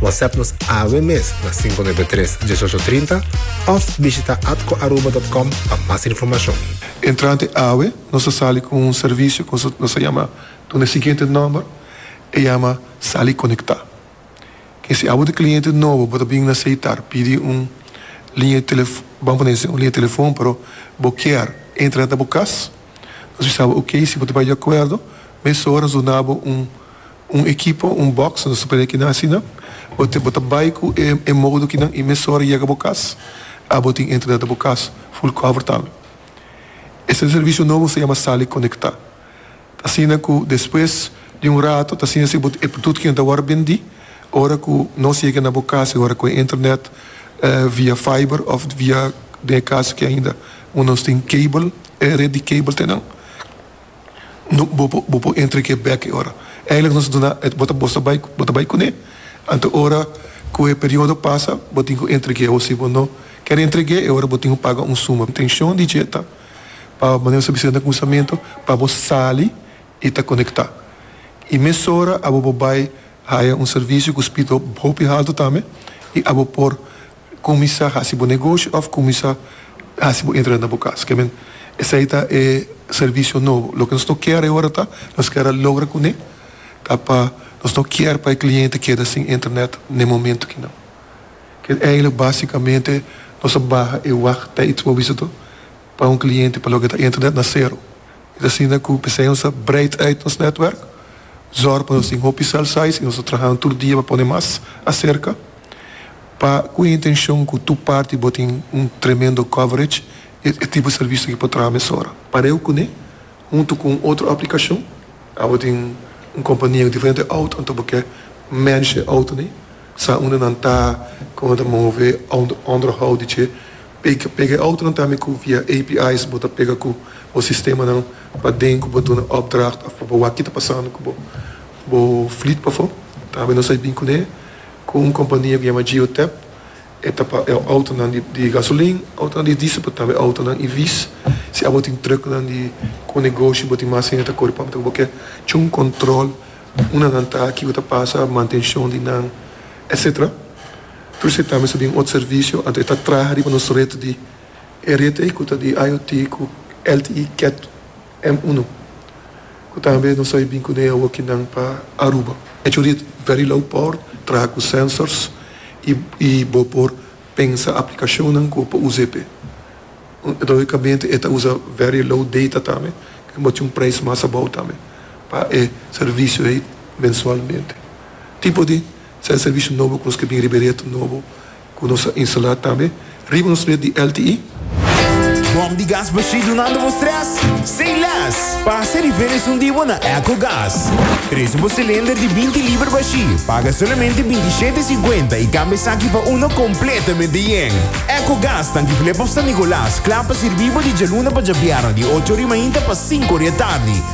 WhatsApp nos awe mes na 593 1830 of bishita atcoaruba.com pa mas informacion. Entrante awe nos a sali cu un servicio cu nos a yama duna e siguiente nomber, e yama Sali Conecta. Ke si abo ta cliente nobo bo ta bin na seitar pidi un liña di telefon, ban pone así, un liña di telefon pero bo kier entra ta bo cas, nos bisa bo ok, si bo ta bay di acuerdo, mesora nos duna bo un Un ekipo, un box, nos ta pende kinan asina. Bo ta bo ta bai ku e e modo kinan i mes ora yega bo kas. A bo tin entrada ta bo kas, full cover tambe. Esta un servisio nobo se yama Sali Konekta. Ta asina ku despues di un rato ta asina si bo tin e produto kinan ta wòrdu bendí ora ku nos yega na bo kas i ora ku e internet via fiber òf via den e kaso ku ainda un nos tin cable e ret di cable te nan. bo bo por entra ke bek e ora eindelijk nos a duna e bo ta bo sta bai bo ta bai kune anto ora ku e periodo pasa bo tin ku entra ke o si bo no ker entra ke e ora bo tin ku paga un suma intenshon di dje ta pa manera nos a bisa na kuminsamentu pa bo sali i ta konekta i mesora abo bo bai haya un servicio ku spito hopi haltu tambe i abo por. Cuminsa haci bo negoshi of cuminsa haci bo entrada na bo cas. K'e men, esai ta e servicio nobo. Loke nos no kier e ora ta, nos kier a logra cune ta pa nos no kier pa e cliente keda sin internet n'e momento kinan. K'e eigelik basicamente nos a baha e wacht tijd pa bo bisa to. pa un kliente pa loke ta internet na sero. Es asina ku Besenza breid uit nos netwerk, zòrg pa nos tin hopi cell sites i nos ta trahanan tur dia pa pone mas aserka pa ku e intenshon ku tur parti bo tin un tremendo coverage i e tipo serviso ke por traha mesora. Pareu kuné, huntu ku un otro aplikashon, abo tin un kompania ku diferente outo, anto bo ke mènsh e outonan, sa unda nan ta, ku nan ta move, onderhou di dje. Pega pega e autonan tambe ku via API's bo ta pega ku bo sistemanan paden ku bo duna opdracht òf pa bo wak ki ta pasando ku bo bo fleet pafó. Tambe nos a bin kuné ku un kompania ku yama Geotap, e ta pa autonan di di gasolin, autonan di diesel pero tambe autonan EV's. Si abo tin trucknan di ku negoshi bo tin mas hende ta kore pampe ta ku bo ke cho un kòntròl unanan ta aki ku ta pasa, mantenshon di nan, etsetera. Truce ta mester bin ot servicio, anto e ta traha riba nos red di e rete cu ta di IoT cu LTE Cat M uno, cu tambe nos a bin cun'e awokinan pa Aruba. E cu red very low power, traha cu sensors y bo por pensa aplicacionnan cu pa uza e pe. Logicamente e ta uza very low data tambe, cu bo tin un prijs mas abao tambe pa e servicio ey mensualmente. Tipo di. Sèn servisio nobo ku nos ke bin riba e reto nobo ku nos a instalá tambe riba nos ret di LTE. Bòm di gas Bashir dunando bo strès? Say less! Pasa rifer esun di bo na Eco Gas. Presio bo silinder di binti liber Bashir, paga solamente binti i shete sinkuenta i kambia esaki pa uno kompletamente yen. Eco Gas tanki flip of San Nicolas kla pa sirbi bo di djaluna pa djabièrnè di ocho ori mainta pa sinku ori atardi.